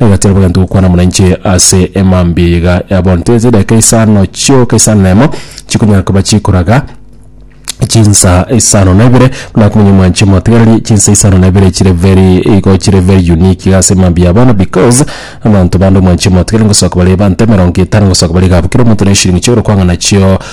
Nagatiara bwegento gokwana buna inche ase emambia eye iga ya bono, tari ase edageka isano chioka isano na emo chikonyara koba chikoraga chinsa isano na ibere buna akominyoka mwanche motigereri chinsa isano na ibere chire very igo chire very unique iga ase emambia ya bono because abanto bande omwanche motigereri ngosoka bare ebanta emerongo etano ngosoka bare iga abwo kera omonto na eshirini chiaye ore kwang'a nachio.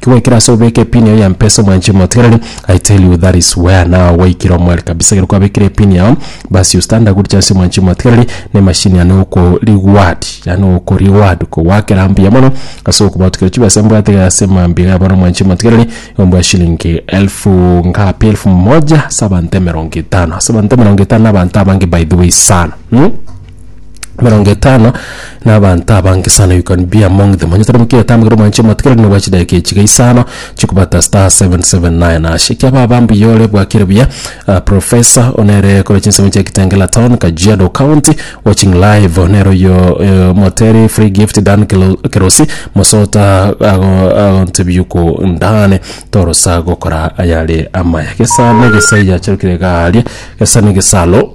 Kigwekire ase obeke epini yao ya mpesa omwanche omotigereri I tell you that is where now gwaikire omware kabisa ekero kwabekire epini yao basi you stand a good chance omwanche omotigereri na emachine yane oko reward yaani oko reward kogwakera mbuya mono ase okobatukera chibesa mbwate iga ase mambia iga bono omwanche omotigereri igo mbwa shilingi elfu ngapi elfu moja ase abanto emerongo etano ase abanto emerongo etano na abanto abange by the way sana mh? emerongo etano na abanto abange sana you can be among them onye tari mokia otamegete omwanche omotwe kero nigokwa chidakika echi iga isano chikobata star 779 hash ekia baba mbuya ore bwakire buya ah, professor one ere kore chinsemo chia kitengela town kajiado county watching live nero oyo eh, omoteri free gift dan Kelo- kerosi mosota ago- agontebia ko ndane torosa gokora ayare amaya gesa na gesa yacherukire garia gesa na gesalo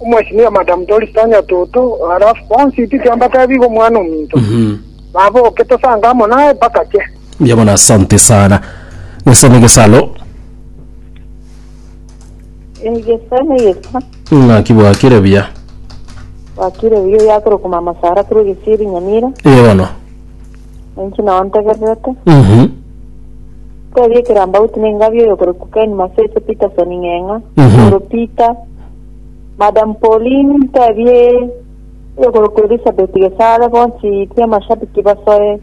Omwesimiwa Madam Doris Tanya Toto, alafu bonsi intwe twambateba biga omwana ominto. Baboke tosange amo naye mpaka ache. Mbuya mono asante sana gesa negesalo Egesa negesa ng'aki bwakire buya wakire buya yakorokwa mama Sara korwa Gisiiri Nyamira eye bono ninki nao ntegererete Mhm. tebia ekerambauti nengabia oyokorokwa Ken Masese Peterson Ng'eng'a Mhm. oro Peter Madam Pauline ntebie eyorokwa Elizabeth gesare bonsi tia amashabiki basoe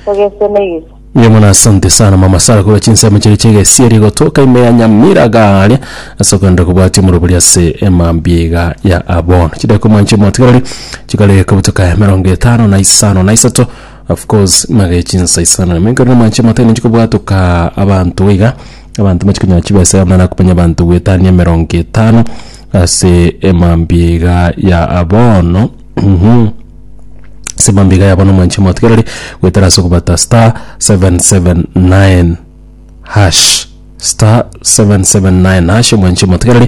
togese na egesa. Mbuya mono asante sana mama Sara korwa chinsemo chiria chi'egesieri gotoka ime ya Nyamira garia ase okogenda kobwatia omorobori ase emambia iga ya abono. Chidaeka omwanya chi'omotigareri chikare kobutoka emerongo etano na isano na isato of course magechinsa isano na ime nkorire omwanya chi'omotigareri nchikobwatoka abanto iga Abanto mbache konyora chibesa yabo naro akonya abanto goetania emerongo etano ase emambia ya bono mhm ase emambia iga ya bono mwanche motigereri goetera ase okobata star 779 hash star 779 hash mwanche motigereri